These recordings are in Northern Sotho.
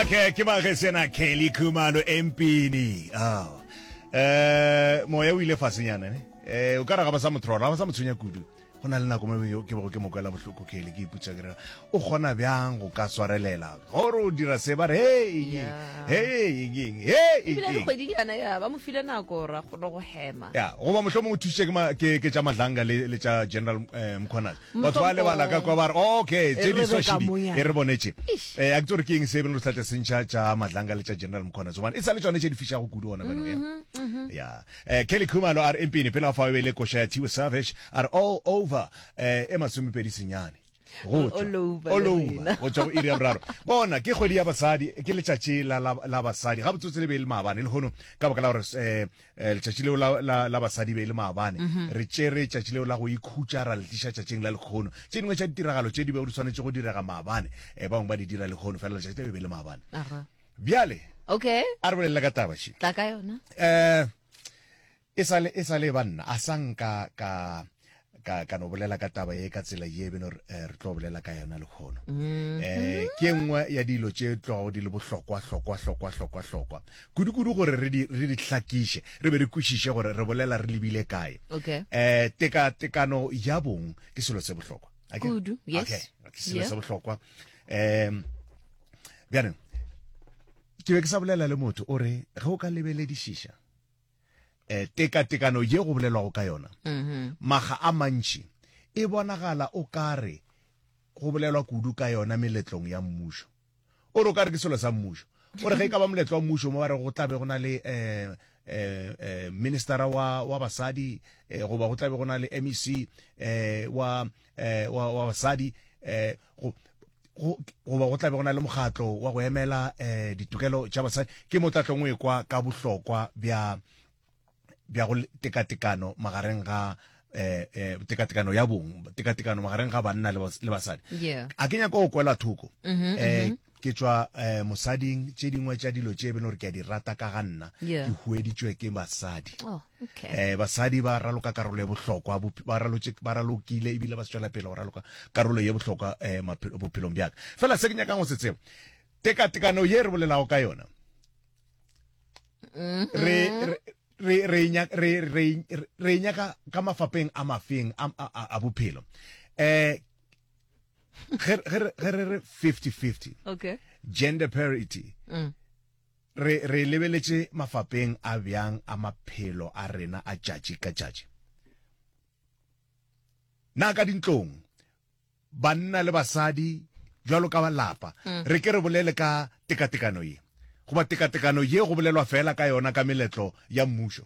Okay, ke ba ge sena Kelly Khumalo empini. Oh. Eh, moya o ile fasenyana ne. Eh, o ka ra ga ba sa motrora, ga ba sa motshwenya kudu. Go na le nako mo ke bego ke mokwela bohloko Kelly ke iputsa ke re o gona bjang go ka swarelela. Gore o dira se ba re hey, Yeah. hey, eng, hey, ebile eng. dikgwedinyana ya ba mo file nako ra kgona go hema Ya, goba mohlomongwe o thusitše ke ma- ke ke tša madlanga le le tša general eh, mkhwanazi batho ba lebala ka kwa ba re okay tše di swashidi e re bonetše eh a ke re ke eng se e beng re tlatla sentšha tša madlanga le tša general mkhona tsomane e sa le tšone tše di fišago kudu ona beno ya ya eh kelly khumalo a re empini pele ga fa e le kosha ya tiwe savage a re all over eh e masomepedi senyane go tswa go iri ya boraro bona ke kgwedi ya basadi ke letšatši la basadi ga botsotse le be le maabane le gono ka baka la gore um Eh, letšatši leo la, la, la basadi be e le maabane mm -hmm. re tšere tšatši leo la go ikhutša ra le tliša tšatšing la lekgono tše dingwe tša ditiragalo tše di bego di tshwanetse go direga maabane e eh, bangwe ba di dira lekgono fela letšatši leo e be e le maabane bjale okay a re bolelela ka taba še tla ka yona um e sale e sale banna a sanka ka ka ka no bolela ka taba ye ka tsela ye beno re eh, tlo bolela ka yona lekgono mm-hmm. eh ke nngwe ya dilo tše tlogago di le bohlokwa hlokwa hlokwa hlokwa hlokwa kudu-kudu gore re di re di hlakiše re be re kwešiše gore re bolela re lebile kae okay eh teka tekano ya bong ke selo se bohlokwa kudu yes okay ke selo se bohlokwa em bjaneng ke be ke sa bolela le motho o re ge o ka lebeledišiša eh, tekatekano ye go bolelwago ka yona mm-hmm. maga a mantši e bonagala o kare go bolelwa kudu ka yona meletlong ya mmušo o re o kare ke selo sa mmušo o re ge e ka ba moletlo wa mmušo mo ba re go tlabe go na le um eh, eh, ministera wa, wa basadi eh, goba go tlabe go na le mec eh, wa, eh, wa, wa basadi eh, go goba go tlabe go na le mokgatlo wa go emela um ditokelo tša basadi ke mo tlatlong o ekwa ka bohlokwa bja bja go tekatekano magareng ga eh, eh, tekatekano ya bong tekatekano magareng ga banna le basadi a ke nyako go kwela thoko um ke tšwa eh, mosading tše dingwe tša dilo tše e bele gore ke a di rata ka ga nna Yeah. ke hueditšwe ke basadi Oh, okay. eh basadi ba raloka karolo ya bohlokwa bop- ba ralotše- ba ralokile ebile ba se tšwela pele go raloka karolo ye bohlokwa eh maphe- bophelong bjaka fela se ke nyakang go se tseba tekatekano ye re bolelago ka yona re re- re re nya- re- re- re nyaka ka mafapeng a mafeng a- a a- a bophelo eh ge re re 50-50 okay. gender parity mm. re, re lebeletše mafapeng a bjang a maphelo a rena a tšatši ka tšatši na ka dintlong banna le basadi jwalo ka balapa mm. re ke re bolele ka tekatekano ye goba tekatekano ye go bolelwa fela ka yona ka meletlo ya mmušo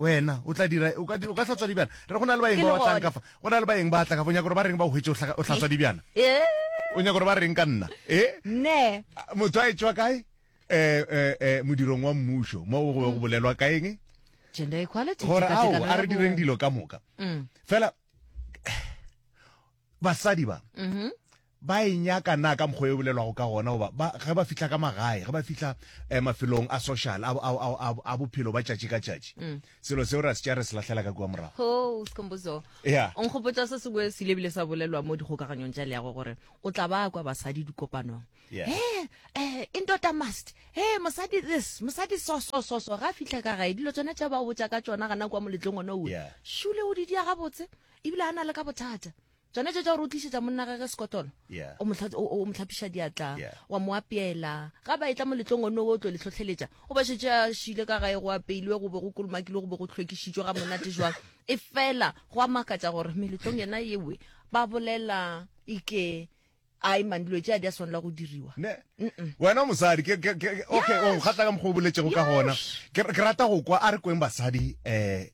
Wena, o tla dira, o ka, o ka hlatswa dibjana. Re go na le baeng ba batlang ka fa, go na le baeng ba tla ka fa, o nyaka gore ba reng ba o hwetše o hlatswa dibjana? O nyaka gore ba reng ka nna? E? Ne. Motho a etšwa kae? Eh, eh, eh, modirong wa mmušo, mo go be go bolelwa ka eng? Gender equality. Gore, ao, a re direng dilo ka moka. Mm. Fela, Basadi ba ba e nyaka na ka mokgwa e bolelwago ka gona goba ba, ge ba fihla ka magae ge ba fihla eh, mafelong a social a, a, a, a, a bophelo ba tšatši ka tšatši selo seo ra se tša re se lahlela ka kua morago ho sikhombuzo Yeah. o nkgopotsa se sengwe se ile bile sa bolelwa mo dikgokaganyong tša leago gore o tla ba kwa basadi dikopanong Yeah. Eh, eh, e nto ta must e mosadi this mosadi so so so so ga a fitlha ka gae dilo tsone tša ba botsa ka tsona gana kwa moletlong one o Yeah. šule o di dia gabotse ebile a na le ka bothata tsone tse tsa gore o tlisetsa monna gage sekotolo o motlhapiša diatla wa mo apeela ga ba e tla moletlong one o tlo le tlhotlheletsa o ba shetse a šile ka gae go apeilwe go be go kolomakilwe go be go tlhwekišitšwe ga monate jwang e fela go a makatsa gore meletlong yena ewe ba bolela ike a e mang dilo tse a di a tshwanela go diriwa wena mosadi okay o nkgatla ka mokgwa o boletsego ka gona ke rata go kwa a re kweng basadi um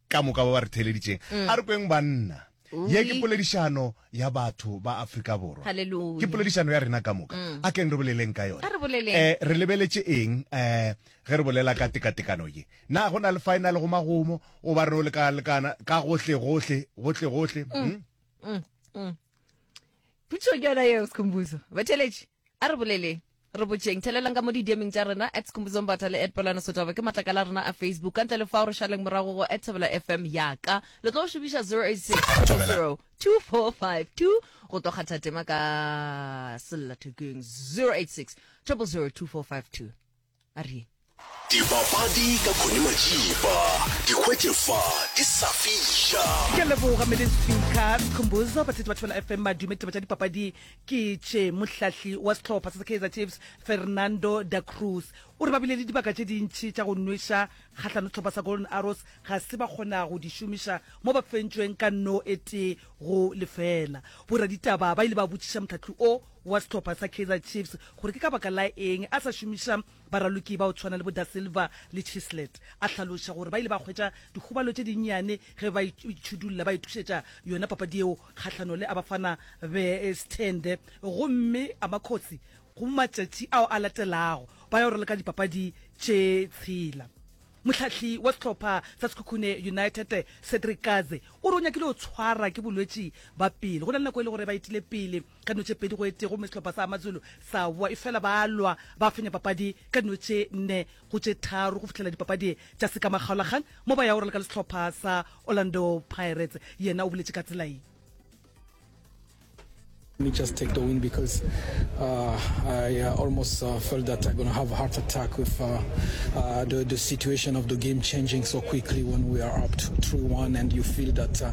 ka moka ba ba re theeleditšeng. A re kweng banna, ye ke poledišano ya batho ba Afrika Borwa. Haleluya. Ke poledišano ya rena ka moka. A keng re boleleng ka yona. A re boleleng. Eh, re lebeletše eng eh ge re bolela ka tekatekano ye? Na go na le fa e na le go magomo goba re no leka-lekana ka gohle-gohle, gohle-gohle? Hm? Potšišo ke yona yeo, Skhumbuzo. Batheeletši, a re boleleng. Re botšeng. Thelelang ka mo didieming tša rena, at Skhumbuzo Mbatha le at Pelwana Sotaba ke matlakala a rena a Facebook. Ka ntle le fao, re šaleng morago go at Thobela FM ya ka. Le tlo šomiša 0862202452 go tlo kgatha tema ka sellathekeng 0862202452. A re. Dipapadi ka Connie Majiba. Di hwetše fa di sa fiša. Ke a leboga Mele Speaker Skhumbuzo, batheetši ba Thobela FM, madume, ditaba tša dipapadi ke tše. Mohlahli wa sehlopha sa Kaizer Chiefs Fernando da Cruz o re ba bile le dibaka tše dintši tša go nweša kgahlano sehlopha sa Golden Arrows ga se ba kgona go di šomiša mo ba fentšweng ka no e tee go lefela. Boraditaba ba ile ba botšiša mohlahli o wa sehlopha sa Kaizer Chiefs gore ke ka baka la eng a sa šomiša baraloki ba o tshwana le bo Da Silva le Chislet. A hlaloša gore ba ile ba hwetša dikgobalo tše dinnyane ge ba itšhudulla ba ithušetša yona papadi yeo kgahlano le Abafana Bes'thende gomme Amakhosi go matšatši ao a latelago ba yo raloka dipapadi tše tshela. Mohlahli wa sehlopha sa Sekhukhune United Cedric Kaze o re o nyakile go tshwara ke bolwetši ba pelo go na le nako e le gore ba etile pele ka dino tše pedi go e tee gomme sehlopha sa Amazulu sa wa efela ba lwa ba fenya papadi ka dino tše nne go tše tharo go fihlela dipapadi tša sekamakgaolakgang mo ba ya orela ka le sehlopha sa Orlando Pirates yena o boletše ka tsela ye me just take the win because uh, I uh, almost uh, felt that I'm going to have a heart attack with uh, uh, the, the situation of the game changing so quickly when we are up 3-1 and you feel that uh,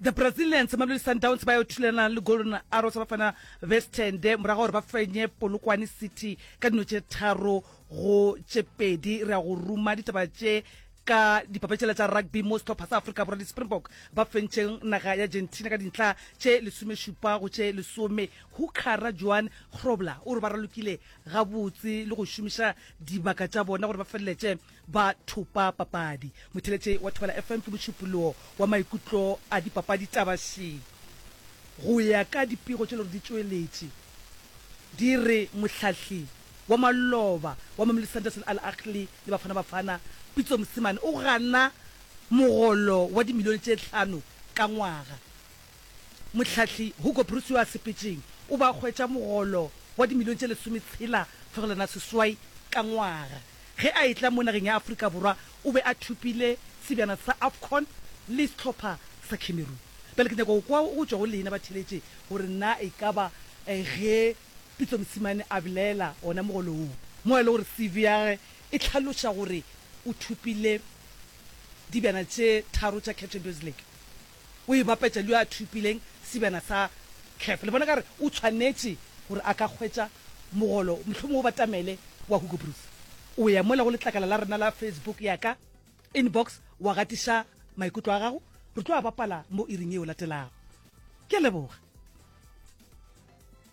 The Brazilians, Mamelodi Sundowns ba yo thulana le Golden Arrows ya Bafana Bestende morago ga gore ba fenye Polokwane City ka dino tše tharo go tše pedi. Re ya go ruma ditaba tše ka dipapetšela tša rugby mo sehlopha sa Afrika Borwa di-Springbok ba fentše naga ya Argentina ka dintlha tše lesomešupa go tše lesome. Hookhara Johan Grobler o re ba ralokile gabotse le go šomiša dibaka tša bona gore ba feleletše ba thopa papadi. Motheletše wa Thobela FM ke mošupologo wa maikutlo a dipapadi taba še. Go ya ka dipego tše lego di tšweletše di re mohlahli wa maloba wa Mamelodi Sundowns le Al Ahly le Bafana Bafana, Pitso Mosimane o gana mogolo wa dimilione tše hlano ka ngwaga. Mohlahli Hugo Broos yo a sepetšeng o be a hwetša mogolo wa dimilione tše lesometshela fegelwana seswai ka ngwaga. Ge a etla mo nageng ya Afrika Borwa o be a thopile sebjana sa Afcon le sehlopha sa Cameroon. Bjale ke nyaka go kwa go tšwa go lena batheeletši gore na e ka ba ge Pitso Mosimane a belaela wona mogolo wo, mo e le gore CV ya gagwe e hlaloša gore o thopile dibjana tše tharo tša Caf Champions League, o e bapetša le yo a thopileng sebjana sa cap. Le bona ka gore o tshwanetše gore a ka hwetša mogolo, mohlomongwe o batamele wa Hugo Broos. O ya mola go letlakala la rena la Facebook ya ka, inbox, wa gatiša maikutlo a gago. Re tlo a bapala mo iring yeo latelago. Ke a leboga.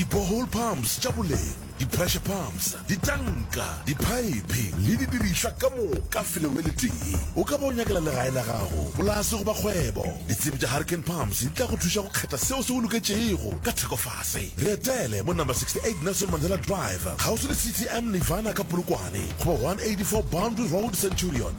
Di-borehole pumps tša boleng, di-pressure pumps, ditanka, diphaephe le didirišwa ka moka felong le letee. O ka ba o nyakela legae la gago, polase goba kgwebo. Ditsebi tša Hurricane Pumps di tla go thuša go kgetha seo se go loketšego ka thekofase. Re etele mo number 68 Nelson Mandela Drive, kgauswi le CTM Nirvana ka Polokwane, goba 184 Boundary Road, Centurion.